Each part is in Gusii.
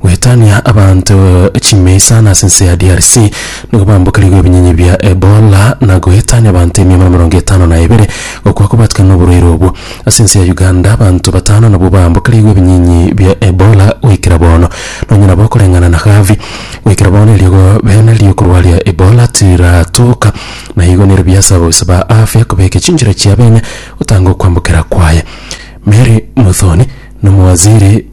Goetania abanto chimia isano ase ense ya DRC nigo bambokerigwe ebinyenye bia Ebola na goetania abanto emia buna emerongo etano na ebere gokwa kobatikana noborwaire obwo. Ase ense ya Uganda abanto batano nabwo bambokerigwe ebinyenye bia Ebola goikera bono. Nonye nabo koreng'ana na Harvey, goikera bono eriogo bene riokorwaria Ebola tiratoka na igo nerio biasaba oboisa ba afya kobeka chinchera chia bene gotanga okwambokera kwaye. Mary Muthoni nomowaziri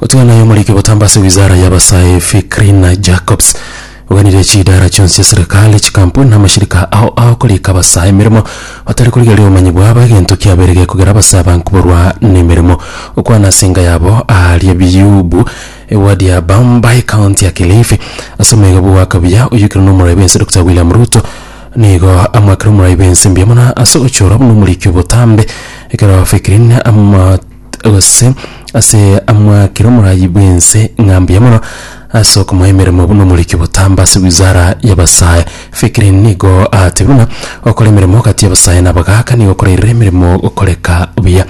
Otiga naye omoriki botambe ase wizara y'abasae Fikrina Jacobs oganirie chidara chionsi chia serikali, chikampuni na amashirika ao agokorika abasae emeremo batari korigereria obomanyi bwabo egento kiabeire gekogera abasae aba nkoborwa nemeremo. Okwana ase enka yabo aaria Biyubu, ewadi ya Bambai, county ya Kilifi, ase omwega bwo goaka buya oyokirwe nomorai bwense Doctor William Ruto nigo amoakire omorai bwense mbuya mono ase ogochora buna omoriki obotambe ekero Fikrina ama gose ase amwakire omoraai bw'ense ng'a mbuya mono ase okomoa emeremo buna omoriki botamba ase wizara y'abasae. Fikiri nigo atebirie buna okora emeremo gati y'abasae na abagaaka nigo okorairera emeremo gokoreka buya.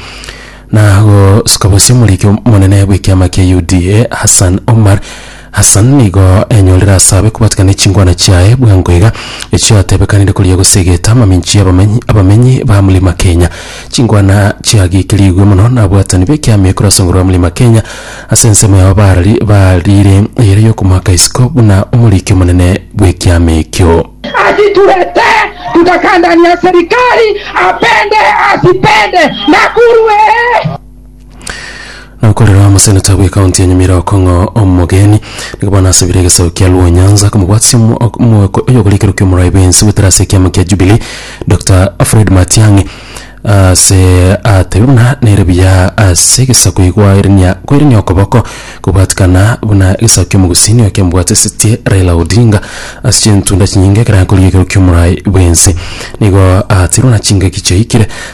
Na gosuka bosie omoriki omonene bw'ekiama kia UDA Hassan Omar. Hassan nigo enyorire ase abe kobatikana ne chingwana chiaye bwango iga, echio atebekanire koria gose egete amaminchi y'abamenyi abamenyi ba Mlima Kenya. Chingwana chia Giki rigwe mono nabwatani b'ekiama ekero ase Ngoro ya Mlima Kenya ase ensemo yao barari barire eyere y'okomoaka isiko buna omoriki omonene bw'ekiama ekio. Asitulete tutakandania serikali apende asipende Nakuru ee. Nokorera omoseneta bw'ekaunti ya Nyamira Okong'o Omogeni nigo bono asabire egesaku kia Luo Nyanza komobwatisia omo- ok- omoeko oy'okorikero kia omorai bwensi goetera ase ekiama kia Jubilee Doctor Fred Matiang'i ase atebe buna nere buya ase egesaku egwaerenia kwaerenia okoboko kobwatikana buna egesaku kia omogusini oyo kiamobwatisetie Raila Odinga ase chintunda chinyinge ekero akorikero kia omorai bwensi nigo atirwe na chingaki chiaikire